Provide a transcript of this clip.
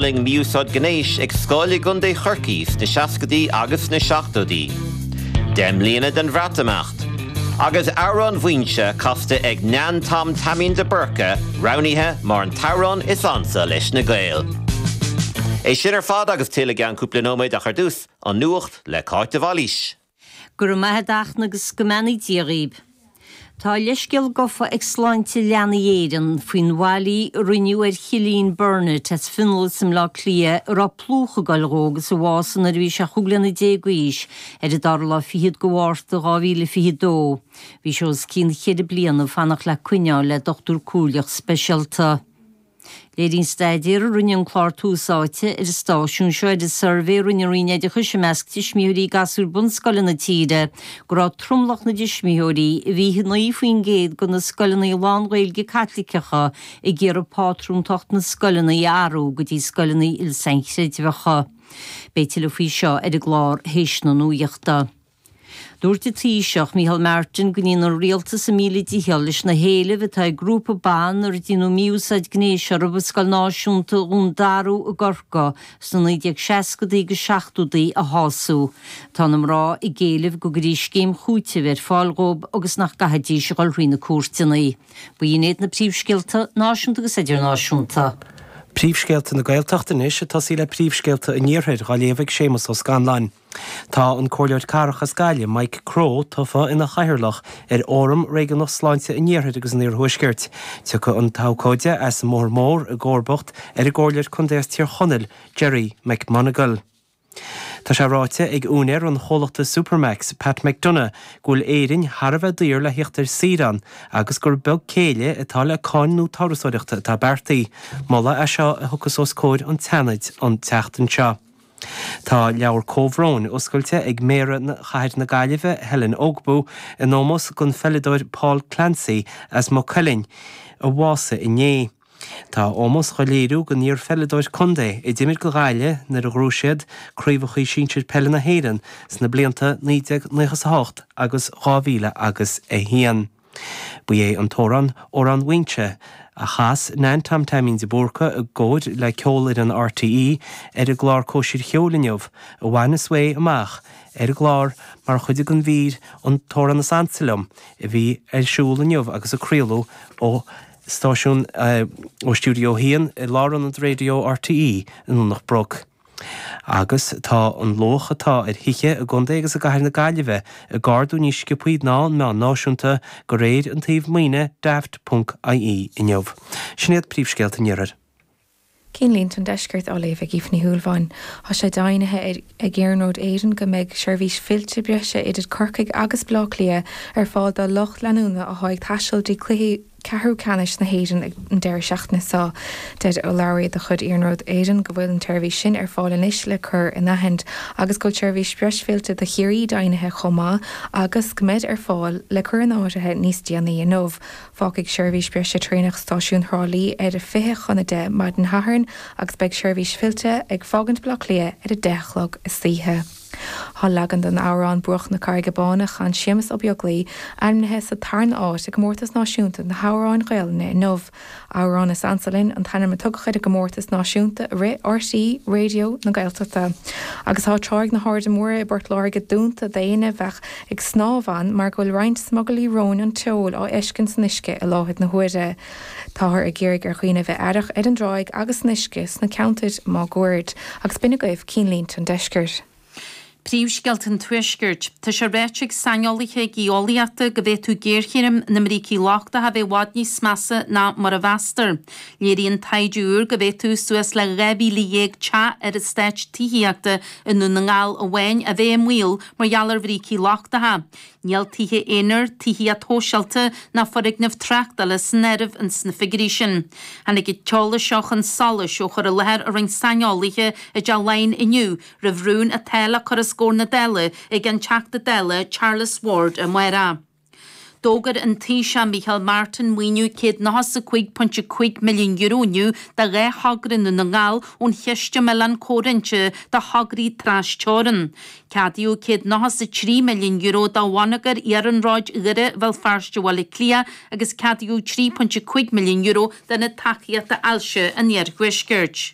D'fhulaing mí-úsáid gnéis ag scoil i gContae Chorcaí sna seascaidí agus sna seachtóidí. Deich mbliana den Bhreatimeacht. Agus Amhrán Mhuínse casta ag Neain Tom Taimín de Búrca roghnaithe mar an t-amhrán is ansa leis na Gaeil. É sin ar fad agus tuilleadh i gceann cúpla nóiméad ach ar dtús, an Nuacht le Cáit de Bhailís. Go raibh maith a't a Fhachtna agus go mbeannaí Dia dhaoibh. Tá leithscéal gofa ag Sláinte Leanaí Éireann faoin bhfaillí a rinneadh ar Chillian Burnett as Fionlas i mBleá Cliath a raibh plúchadh ag goil dhó agus a bhásaigh nuair a bhí sé chúig bliana déag d'aois ar an dara lá fichead de Mhárta 2022. Bhí sé os cionn cheithre bliana ag fanacht le coinne a fháil le dochtúir comhairleach speisialta. Léiríonn staidéar a rinne an clár Tús Áite ar an stáisiún seo ar an suirbhé a rinne an Roinn Oideachais i measc tuismitheoirí gasúir bunscoile na tíre go raibh tromlach na dtuismitheoirí i 29% de na scoileanna lán-Ghaeilge Caitliceacha ag iarraidh pátrúntacht na scoileanna a athrú go dtí scoileanna il-sainchreidmheacha. Beidh tuilleadh faoi seo ar an gclár théis na nuachta. Dúirt an Taoiseach, Micheál Martin go ndéanfaidh an Rialtas a míle dícheall leis na héilimh atá ag grúpa ban ar déanadh mí-úsáid gnéis orthu i Scoil Náisiúnta Dhún Darú i gCorcaigh sna 1960idí agus 70idí a shású. Tá na mná ag éileamh go gcuirfí scéim chúitimh ar fáil dhóibh agus nach gcaithfidís a dhul thrí na cúirteanna. Ba hin iad na príomhscéalta, náisiúnta agus idirnáisiúnta. Príomhscéalta na Gaeltachta anois ag tosaí le príomhscéalta an Iarthair, dhá léamh ag Séamus Ó Scanláin. Tá an Comhairleoir Cathrach as Gaillimh, Mike Crowe, tofa ina Chathaoirleach ar Fhóram Réigiúnach Sláinte an Iarthair agus an Iarthuaiscirt. Tiocfaidh an t-abhcóide as an mBóthar Mór i gcomharbacht ar an gComhairleoir Contae as Tír Chonaill, Gerry McMonagle. Tá sé ráite ag úinéir an chomhlachta Supermac's, Pat McDonagh, go bhfuil Éirinn thar a bheith daor le theacht ar saoire ann agus gur beag céille atá le cáin nua turasóireachta atá beartaithe. Moladh é seo a thiocfas os comhair an tSeanaid an tseachtain seo. Tá leabhar comhbhróin oscailte ag Méara Chathair na Gaillimhe, Helen Ogbu, in ómós don pheileadóir Paul Clancy as Maigh Cuilinn, a bhásaigh inné. Tá ómós dhá léiriú don iar-pheileadóir contae, a d'imir do Ghaillimh nuair a ghnóthaigh siad Craobhachaí Sinsir Peile na hÉireann sna blianta 1998 agus 2001. Ba é an t-amhrán 'Amhrán Mhaínse', a chas Nan Tom Taimín de Búrca i gcomhar le Ceolfhoireann RTÉ ar an gclár Cóisir Cheoil inniu, a bhain an svae amach ar an gclár mar chuid den mhír 'An tAmhrán is Ansa Liom' a bhí ar siúl inniu agus a craoladh ó stáisiún, ó stiúideo 1 i Lárionad Raidió RTÉ i nDomhnach Broc. Agus tá an luach atá ar thithe i gContae agus i gCathair na Gaillimhe ag ardú níos sciopthaí ná an meán náisiúnta, go réir an tsuímh maoine Daft. ie inniu. Sin iad príomhscéalta an iarthair. Cinnlínte an Deiscirt á léamh ag Aoife Ní Shúilleabháin. Tá sé deimhnithe ag Iarnród Éireann go mbeidh seirbhís fillte breise idir Corcaigh agus Baile Átha Cliath ar fáil do lucht leanúna atá ag taisteal dtí cluichí Ceathrú Ceannais na hÉireann ag an deireadh seachtaine seo. Deir urlabhraí de chuid Iarnród Éireann go bhfuil an tseirbhís sin ar fáil anois le cur in áirithint agus go bhfuil seirbhís breise fillte do Chiarraí deimhnithe chomh maith agus go mbeid ar fáil le cur in áirithe níos déanaí inniu. Fágfaidh seirbhís breise traenach Stáisiún Thrá Lí ar a 20 chun 10 maidin Shathairn agus beidh seirbhís fillte ag fágaint Baile Átha Cliath ar a 10 a chlog istoíche. Thá leagan den amhrán 'Bruach na Carraige Bána' a chan Séamus Ó Beaglaoich, ainmnithe sa tarna áit i gComórtas Náisiúnta na hAmhráin Ghaelainne inniu. Amhrán is ansa linn an t-ainm a tugadh ar an gcomórtas náisiúnta a rith RTÉ Raidió na Gaeltachta. Agus thá tráigh na hAirde Móire i bPort Láirge dúnta d'aoinne a bheadh ag snámh ann mar go bhfuil roinnt smugairlí róin an tseoil á fheiscint san uisce i láthair na huaire. Táthar ag iarraidh ar dhaoine a bheith aireach ar an dtráigh agus san uisce sna ceantair máguaird, agus b'in agaibh Cinnlínte an Deiscirt. Príomhscéalta an Tuaiscirt. Tá sé ráite ag saineolaithe geolaíochta go bhféadfadh géarchéim na mbrící lochtacha a bheith i bhfad níos measa ná mar a mheastar. Léiríonn taighde úr go bhféadfadh suas le 12,000 teach ar eastáit tithíochta i nDún na nGall amháin a bheith i mbaol mar gheall ar bhrící lochtacha. Níl tithe aonair, tithíocht shóisialta ná foirgnimh tráchtála san áireamh ins na figiúirí sin. Tháinig an t-eolas seo chun solais ó chur i láthair a rinne saineolaithe i dTeach Laighean inniu roimh rún atá le cur os comhair na Dála ag an Teachta Dála Charles Ward amárach. D'fhógair an Taoiseach Micheál Martin maoiniú €195.5 milliún inniu do dhá thogra i nDún na nGall ón Chiste um Oileán Comhroinnte do Thograí Tras-Teorann. Ceadaíodh €193,000,000 do bhonneagar Iarnróid Dhoire, Bhéal Feirste, Bhaile Átha Cliath agus ceadaíodh €3.5 milliún d'Ionad Tacaíochta Ailse an Iarthuaiscirt.